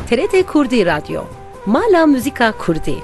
TRT Kurdî Radyo, mala muzîka Kurdî.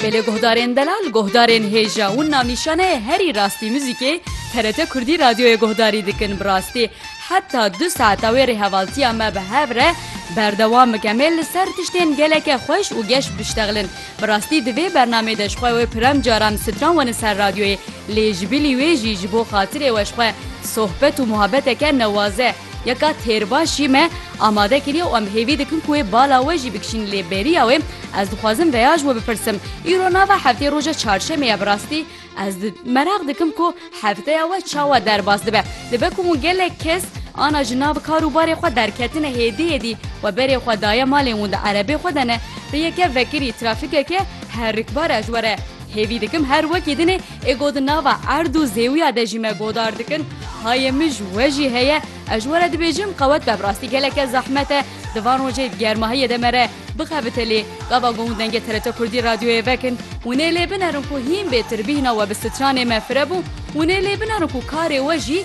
Belê guhdarên delal, guhdarên hêja û navnîşaneyê herî rastî muzîkê TRT Kurdî Radyoyê guhdarî dikin. Bi rastî heta du saeta wê rêhevaltiya me bi hev re berdewam bike. Me li ser tiştên geleke xweş û geş biştexlin. Bi rastî di vê bernamê de ji xwe wê pirem caran stran wene ser radyoyê lê ji bilî wê jî ji bo xatirê we ji xwe sohbet û muhabeteke newaze ya ka têrbaş jî me amade kiriye û em hêvî dikin ku wê bala we jî bikişîn lê beriya wê ez dixwazim veya ji we bipirsim îro nava heftê roja çarşemê ye bi rastî Ez di meraq dikim ku hefteya we çawa derbas dibe. Dibe ku hûn gelek kes ana ji nav kar û barê xwe derketine hêdî hêdî we berê xwe daye malên hûn di erebê xwe de ne. Di yeke vekirî trafîkeke herikbara ji we re hêvî dikim her wekî dinê ê got di nava erd û zêwiya de jî me godar dikin. Hayê min ji we jî heye. Ez ji we re dibêjim qewet be bi rastî geleke zehmet e di van rojê germahiyê de me re Bixebite lê gava gon û dengê TRT Kurdî radyoyê vekin û nê lê binerin ku hîn bêtir bîhna we bi stranê me firebû û nê lê binerin ku karê we jî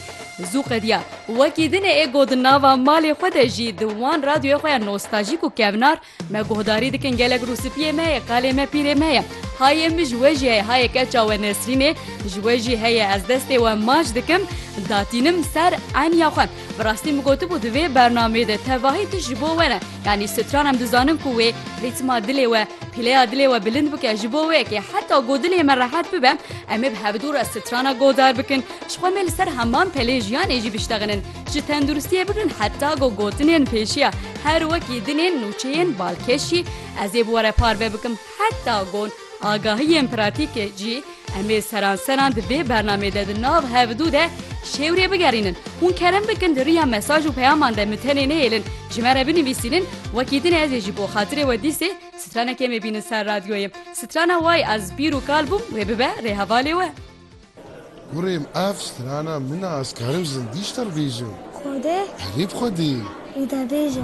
zû qediya. Wekî dinê ê got di nava malê xwe de jî di wan radyoyê xwe ya nostajîk û kevnar me guhdarî dikin gelek rûsipiyê me yê, qalê me pîrê me ye. Hayê min ji we jî heye, hayê keça we Nesrînê ji we jî heye ez destê we maç dikim datînim ser eniya xwe. Bi rastî min gotibû di vê bernameyê de tevahî tu ji bo we ne. Yanî stran em dizanin ku wê rîtma dilê we, pîleya dilê we bilind bike ji bo wê kê heta ku dilê me rehet bibe em ê bi hevdû re strana godar bikin. Ji xwe me li ser heman pelê jiyanê jî biştexinin. Ji tenduristiyê bikin heta ku gotinên pêşiya her wekî dilên nûçeyên balkêşî ez ê bi we re parve bikim heta ku Agahiyên pratîkê jî em ê seranseran di vê bernameyê de di nav hev û du de şêwrê bigerînin. Hûn kerem bikin di riya mesaj û peyaman de min tenê nehêlin ji me re binivîsînin, wekî din ez ê ji bo xatirê we dîsê stranekê me bînin ser radyoyê. Strana Way ez pîr û kal bûm wê bibe rê hevalê we. Kurêm ev strana min e ez karim zindî ji te re bêjim. Xwedê. Erê bi xwedê. Wî de bêje.